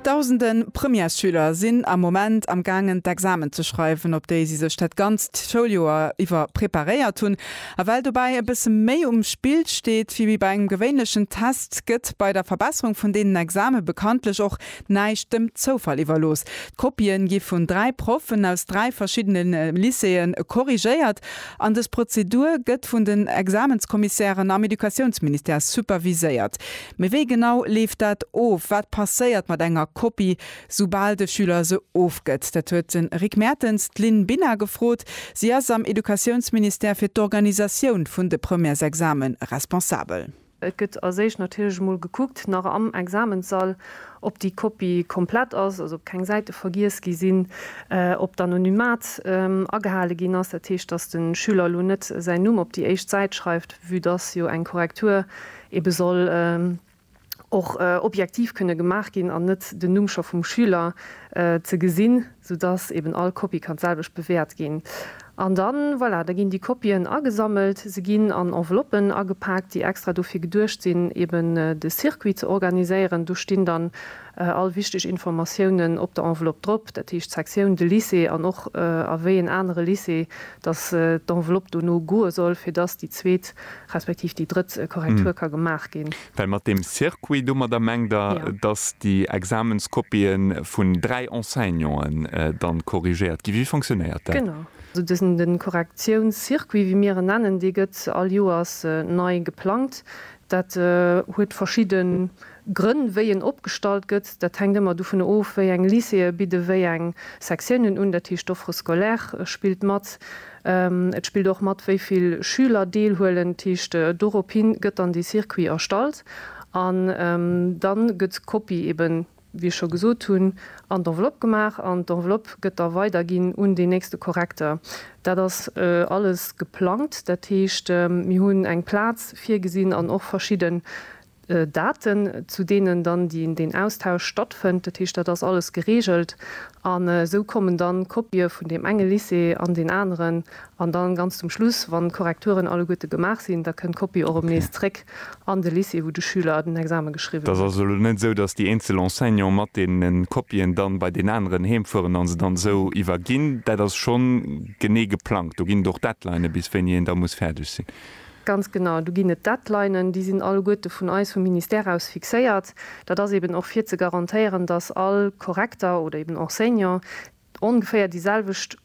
Dausende Premièresschüler sinn am Moment am gaangen d'Examen ze schreiwen, op déi si sech dat ganzt Schouljoer iwwer preparéiert hunn. A well dobäi e bësse méi um Spill steet wéi bei engem gewéinlechen Test, gëtt bei der Verbesserung vun deenen Exame bekanntlech och näischt dem Zoufall iwwerlooss. D'Kopië gi vun dräi Proffen aus dräi verschiddene Lycéeë korrigéiert an dës Prozedur gëtt vun den Examenskommissairen am Educatiounsministère superviséiert. Mee wéi genau leeft dat of? Wat passéiert mat enger Kopie, soubal de Schüler se ofgëtt? Dat huet de Rick Mertens d'Lynn Binna gefrot. Si ass am Educatiounsministère fir d'Organisatioun vun de Premièresexame responsabel. Et gëtt als éischt natierlech emol gekuckt, nach am Examenssall, ob déi Kopie komplett ass, also ob keng Säite vergiess gi sinn, ob d'Anonymat agehale ginn ass, dat heescht, dass de Schüler elo net säin Numm op déi éischt Säit schreift, vue dass jo eng Korrektur Ebe soll och objektiv kënne gemaach ginn an net den Numm scho vum Schüler ze gesinn, sou dass eben all Kopie kann d'selwecht bewäert ginn. An dann, voilà, da ginn déi Kopien agesammelt, se ginn an Enveloppen agepaakt, déi extra dofir geduecht sinn, eben de Circuit ze organiséieren. Do stinn dann All wichteg Informatiounen op der Enveloppe drop, dat heescht d'Sektioun, de Lycée an och a wéi een anere Lycée, dass d'Enveloppe dono goe soll, fir dass déi zweet respektiv déi drëtt Korrektur ka gemaach ginn. Well mat deem Circuit, domadder mengt Der, dass déi Examenskopien vun dräi Enseignanten dann korrigéiert ginn? Wéi fonctionnéiert dat? Genau. Also dësen Korrektiounscircuit, wéi mir en nennen, dee gëtt all Joers nei geplangt. Dat huet verschidde Grënn, wéi en opgestallt gëtt, dat hänkt ëmmer dovun of, wéi eng Lycéeë bidde wéi eng Sektiounen un, dat heescht d'Offre scolaire spillt mat. Et spillt och mat, wéi vill Schüler deelhuelen. Dat heescht, dorophé gëtt dann dee Circuit erstallt an da gëtt d'Kopie eben, wéi ech scho gesot hunn, an d'Enveloppe gemaach an d'Enveloppe gëtt da weiderginn un deen nächste Korrekter. Dat ass alles geplangt, dat heescht, mir hunn eng Plaz virgesinn an och verschidden Daten, zu deenen dann deen Austausch stattfënnt. Dat heescht, dat ass alles gereegelt. An esou kommen dann Kopië vun deem enge Lycée an deen aneren. An dann ganz zum Schluss, wann d'Korrekturen alleguerte gemaach sinn, da kënnt d'Kopie och erëm nees zréck an de Lycée, wou de Schüler den Exame geschriwwen huet. Et ass also elo net esou, dass déi eenzel Enseignanten mat deene Kopien dann bei deen aneren heem fueren a se dann esou iwwerginn. Dat ass schonn genee geplangt. Do ginn et och Deadlinën, bis wéini een da muss fäerdeg sinn. Ganz genau, do ginn et Deadlinen, déi sinn alleguerte vun eis, vum Ministère aus fixéiert. Dat ass eben och fir ze garantéieren, dass all Korrekter oder eben Enseignant ongeféier déi selwecht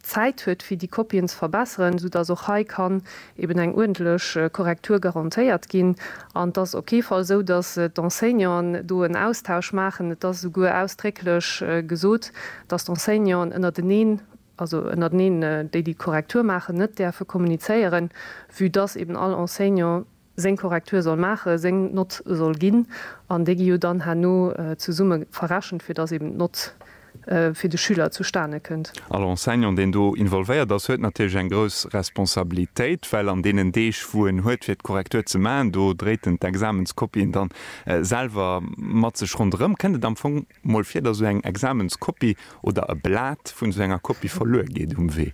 Zäit huet, fir déi Kopien ze verbesseren, soudass och hei kann eben eng uerdentlech Korrektur garantéiert ginn. An et ass op kee Fall esou, dass d'Enseignanten do en Austausch maachen. Et ass esouguer ausdrécklech gesot, dass d'Enseignanten ënnerteneen also ënnerteneen déi déi d'Korrektur maachen, net däerfe kommunizéieren, vue dass eben all Enseignant seng Korrektur soll maachen, seng Nott soll ginn an déi gi jo dann herno zesumme verrechent, fir dass eben d'Nott fir de Schüler zustane kënnt. All Enseignant, deen do involvéiert ass, huet natierlech eng grouss Responsabilitéit, well an deenen Deeg, wou en huet, fir d'Korrektur ze maachen, do dréit en d'Examenskopien dann selwer mat sech ronderëm. Kënnt et am Fong Mol vir, datt esou eng Examenskopie oder e Blat vun esou enger Kopie verluer geet um Wee.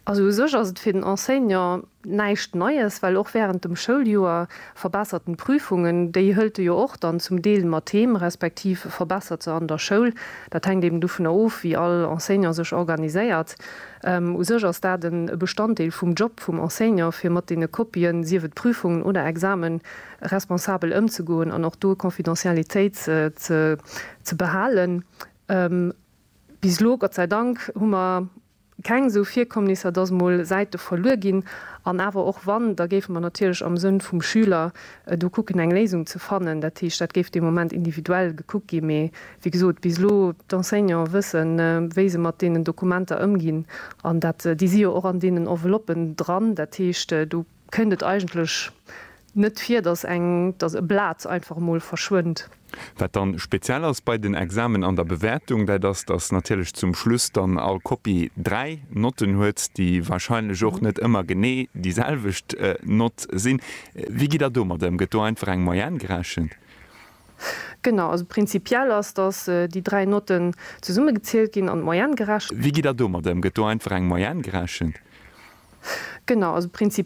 Also u sech ass et fir den Enseignant näischt Neies, well och wärend dem Schouljoer verbessert en d'Prüfungen. Déi hëlt e jo och dann zum Deel mat heem, respektiv verbessert se an der Schoul. Dat hänkt eben dovunner of, wéi all Enseignant sech organiséiert. U sech ass dat e Bestanddeel vum Job vum Enseignant, fir mat deene Kopien, sief et Prüfungen oder Examen, responsabel ëmzegoen an och do Confidentialitéit ze behalen. Bis elo, Gott sei Dank, hu mer keng esou Virkommnisser, dass emol Säite verluer ginn. An awer och wann, da géife mer natierlech am Sënn vum Schüler do kucken, eng Léisung ze fannen. Dat heescht, dat géif dee Moment individuell gekuckt ginn. Mee wéi gesot, bis elo, d'Enseignanten wëssen, wéi se mat deenen Dokumenter ëmginn. An dat, déi si jo och an deenen Enveloppen dran. Dat heescht, do Kënnt et eigentlech net vir, dass eng, dass e Blat einfach emol verschwënnt? Wat dann speziell ass bei den Examen an der Bewäertung, dat ass, dass natierlech zum Schluss dann all Kopie dräi Notten huet, déi wahrscheinlech och net ëmmer genee déi selwecht Nott sinn. Wéi gitt Der domat ëm? Gëtt do einfach eng Moyenne gerechent? Genau, also prinzipiell ass, dass déi dräi Notten zesummegezielt ginn an d'Moyenne gerechent. Wéi gitt Der domat ëm? Gëtt do einfach eng Moyenne gerechent? Genau, also prinzipiell.